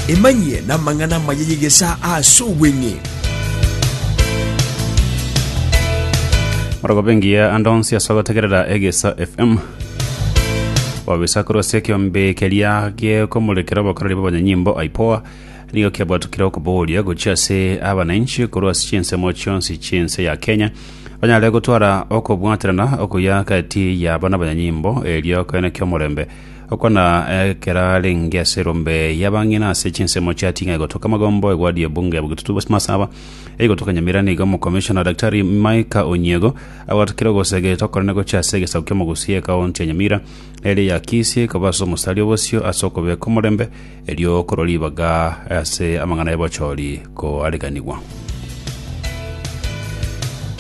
Emanyie namang'ana amaya y'egesaa ase obweng'e. Morogobe engiya ande onsi ase ogotegerera egesa fm wabisa korwa ase ekeombe keria gekomorekera obokoreri bw'abanyanyimbo aipoa nigo kiabwatukire okobogoria gochia ase abananchi korwa ase chinsemo chionsi chiense ya kenya banyare gotwara okobwaterana okuya gati yabo n'abanyanyimbo erio koene ki'omorembe Okwana ekero arenge ase erombe y'abang'ina ase chinsemo chia ting'ai gotoka magombo egwadi y'ebunge ya Bugitutu West Masaba eye gotoka Nyamira nigo omokomishona Daktari Micah Onyiego agoatakire ogosegeta okonene gochia ase egesaku kia Mogusia ekaunti ya Nyamira ere ya Kisii koba ase omosari obosio ase okobeka omorembe erio korwa ribaga ase amang'ana y'obochori koariganigwa.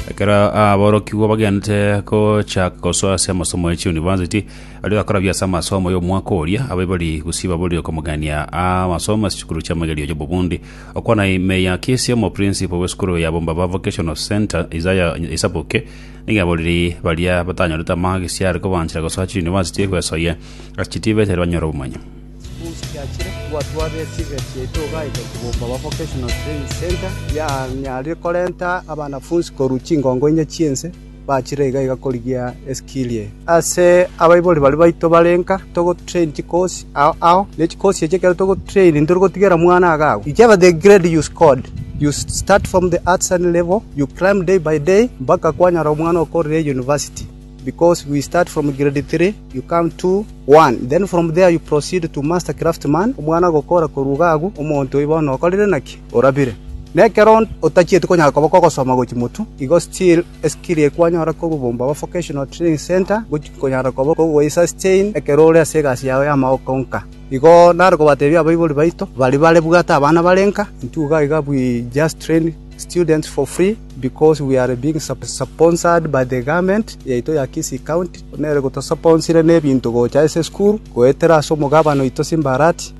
Ekero aborokigwa bagenete gochaka gosoa ase amasomo ye chiunivasiti Aria gakorabia ase amasomo y'omwaka oria, ababe bari gusii baborire okomogania amasomo ase chikuru chi'amagerio y'obobundi. Okwana ime ya Kisi omo principal bw'esukuru ya Bombaba Vocational Centre, Isaiah Isaboke, nigo yaborire baria batanyorete amagisi are kobanchera gosoa chiuniversity gwesoyia ase chitibe chire banyore obomanyi. Chibooks chiachire gwatwarire echiga chiaito goeta ku Bombaba Vocational Training Centre, yanyarire korenta abanafunsi korwa chingongo inye chi'ense. bachire iga iga korigia eskirie. Ase abaibori baria baito bare nka, togotrain chikosi ao ao, ne chikosi echi ekero togotrain ntori gotigera mwana agakwa. Whichever the grade you scored, you start from the artisan level, you climb day by day mpaka kwanyora omwana okorire university, because we start from grade three, you come two, one, then from there you proceed to master craftman, omwana agokora korwa iga agwo, omonto oyo bono okorire naki? orabire. Na ekero otachieti konyara koba kogosoma gochia motu, igo still eskill eye kwanyora kobobomba aba Vocational Training Centre ngochia konyara koba kogo esustain ekero ore ase egasi yao y'amaoko nka. Igo nare kobatebia abaibori baito baria bare bwate abana bare nka, intwe iga iga we just train students for free because we are being sponsored by the government yaito ya Kisii County buna ere gotosuponsire na ebinto gocha ase esukuru goetera ase omogabane oito Simbarati.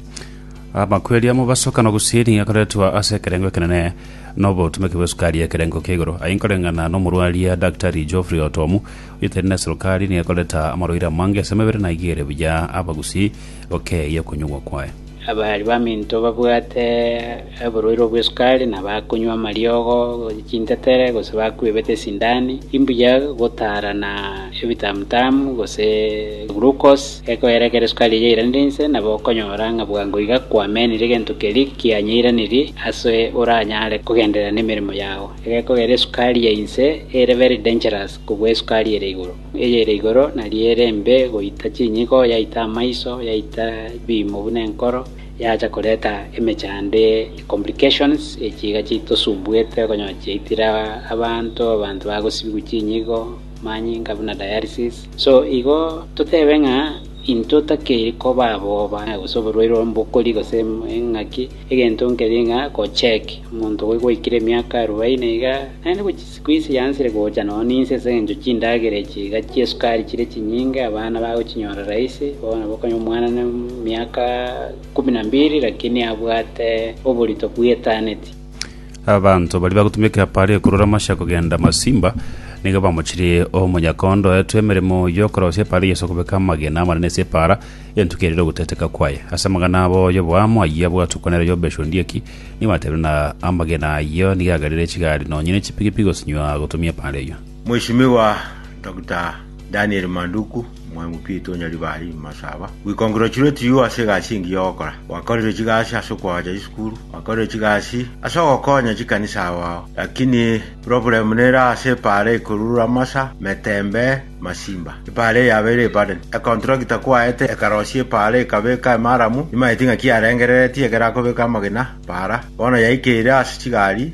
Amakweri a mobasoka nogusini akoretwa ase ekerengo ekenene nobotomeki bw'esukari y'ekerengo kia igoro. Aye nkoreng'ana nomorwaria Daktari Geoffrey Otomu, oyotaini neserukari, nigo akoreta amarwaire amange ase emebere na aigere buya abagusii gokeyia okonyuogwa kwaye. Abari baminto babwate oborwaire bw'esukari na bakonywa amariogo, chintetere, gose bakwebete esindani, imbuya gotaarana ebitamutamu gose glucose. Gekoera ekero esukari eyio yairanire inse, nabo okonyora ng'a bwango iga kwamenire egento keria kianyeiranirie ase oranyare kogenderera nemeremo yao. Egekogera esukari ya inse ere very dangerous kobua esukari ere igoro. Eyere igoro nario ere embe goita chinyigo, yaita amaiso, yaita ebiimo buna enkoro, yacha koreta emechando, complications, echi iga chitosumbuete okonyora chiaitire abanto, abanto bagosibigwa chinyigo, manyinga buna dialysis. So igo totebe ng'a intwe takeiri koba aboba gose oborwaire ombokori gose eng'aki, egento nkeria ng'a gocheck omonto obo gwaikire emiaka arubaini iga, naende gochia siku ise yansire gocha nonye ninse ase eng'encho chindagera echi iga chia esukari chire chinyinge abana bagochinyora rahisi, bono nabo okonywa omwana na emiaka kumi na mbili lakini abwate oborito bw'etaneti. Abanto baria bagotumeka Apaleo korwa Damasiki kogenda Masimba nigo bamochirie omonyakondo oetwe emeremo y'okorosia epaara y'Yeso kobeka amagena amanene ase epaara entuko erere ogoteteka kwaye. Ase amang'ana abo y'oboamo ayio bwatuko nere y'obeche onde eki, nigo batebire ng'a amagena ayio nigo agarire chigari nonya ne chipigipigi gosinywa gotumia epaara eyio. Mweshimiwa Dr. Daniel Manduku, Omwemupiriti o Nyaribari, Masaba, Gwikongirwechirwe tiywo ase egasi engiya ogokora. Gwakorire chigasi ase okoacha chisukuru, gwakorire chigasi ase ogokonya chikanisa ao ao. Lakini problem nere ase epaara ekorurura masa, metembe, masimba. Epaara eye yabeire eburden. Econtractor kwaete ekarosia epaara ekabeka emaramu, nimaeti ng'aki yarengereretie ekero akobeka amagena paara. Bono yaikeire ase chigari,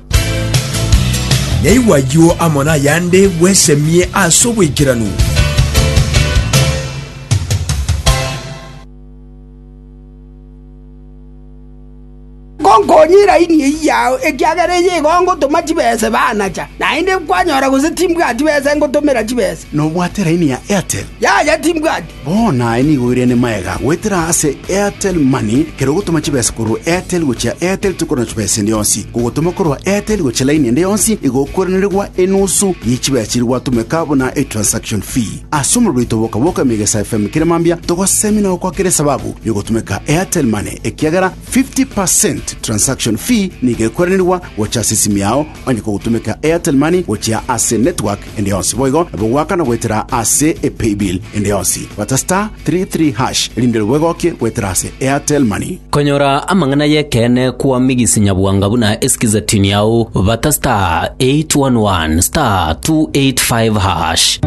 Naigwe ayio amo nayande bwesemie ase oboikeranu. Ngonkonyire raini eyio yao, ekiagera eyio igo ngotoma chibesa ebe anacha. Naende kwanyora gose timbwati besa engotomera chibesa. Nobwate raini ya Airtel? Yaya, timbwati. Bono aye nigo oirene magega goetera ase Airtel Money, kera ogotoma chibesa korwa Airtel gochia Airtel tokorwa na chibesa ende yonsi. Kogotoma korwa Airtel gochia laini ende yonsi igo okoiranerigwa enusu ye chibesa chiria gwatomeka buna etransaction fee. Ase omorero oito boka bwoka Emegesa FM kera mambia togosemia na gokoa kera esababu yogotomeka Airtel Money ekiagera 50 per cent transaction fee nigo ekoiranerigwa gocha ase esimi yao onye kogotomeka Airtel Money gochia ase network ende yonsi boigo nabo goakana goetera ase e paybill ende yonsi bata star three three hash erinde nabo egokie goetera ase Airtel money. Konyora amang'ana y'ekeene kw'omigisi nyabwanga buna esikize tini ao, bata star eight one one star two eight five hash.